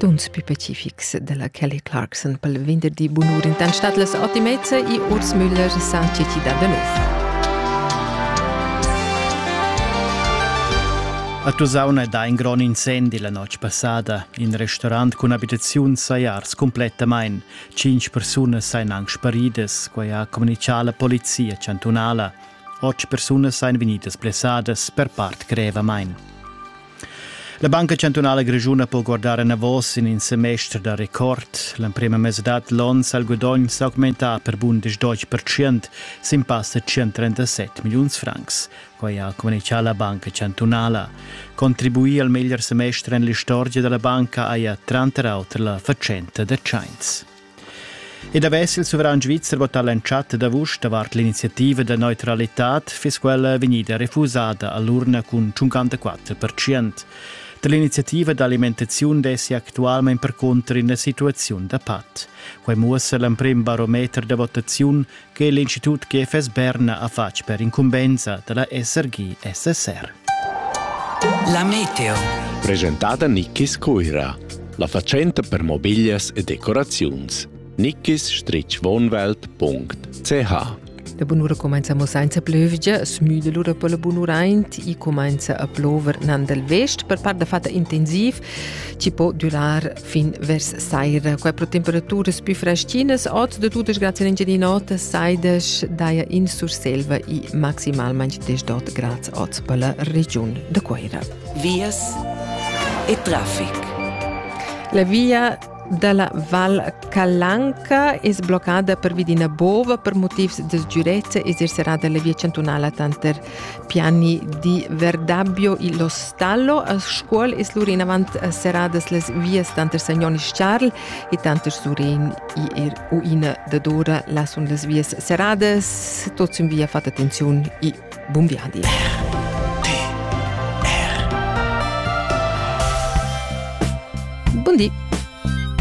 Tuns pü pacifics dalla Kelly Clarkson pel venderdi bunur in tant stat las Otimezza e Urs Müller san citi da Danov. A Tusauna dà in grond incendi la notg passada. In restaurant cun abitaziun saja ars cumplettamain. Cinc persunas sajan anc sparidas, quai ha communichà la polizia chantunala. Otg persunas sajan vegnidas blessadas per part grevamain. La Banca chantunala grischuna po guardar enavos in in semester da record. L'emprema mesadad l'onn sa il gudogn s'augmentà per bundisch deutsch percent sin pass da 137 milliuns francs. Quai ha communichà la Banca chantunala. Contribuir al meglier semester en l'istorgia da la banca haja tranter auter la fatschenta da tschains. Ed avess il suveran svizzer votà l'entschatta d'avust davart l'iniziativa da neutralitad, fiss quella vegnida refusada a l'urna cun 54%. Da l'iniziativa d'alimentaziun dessi actualmain percunter ina situaziun da pat. Quai muossa l'emprim barometer da votaziun che l'institut GFS Berna ha fatg per incumbensa da la SRG SSR. La meteo. Presentata Nickis Cuira, la fatschenta per mobiglias e decoraziuns. nickis-wohnwelt.ch La bunura comenza mo senza plövgia, smüda lura per la bunura aint e comenza a plover nan del vest per part da fatta intensiv, ci po durar fin vers saira. Qua pro temperaturas più fraschinas, oz de tutas grazie Ingelinota, saidas daia in Surselva i maximalmente 10 grads oz per la regiun de Coira. Vias e traffic. La via della Val Calanca è sbloccata per via di una bova per motivi di sicurezza e esercerà delle vie cantonali tanter Piani di Verdabio illo Stallo a Scuol es lur inavant seradas las vias tanter Sagnonis Charl e tanter Surén i er uina dadora là sun las vias seradas, tot sün via fat attenziun e bun viadi. Buondì!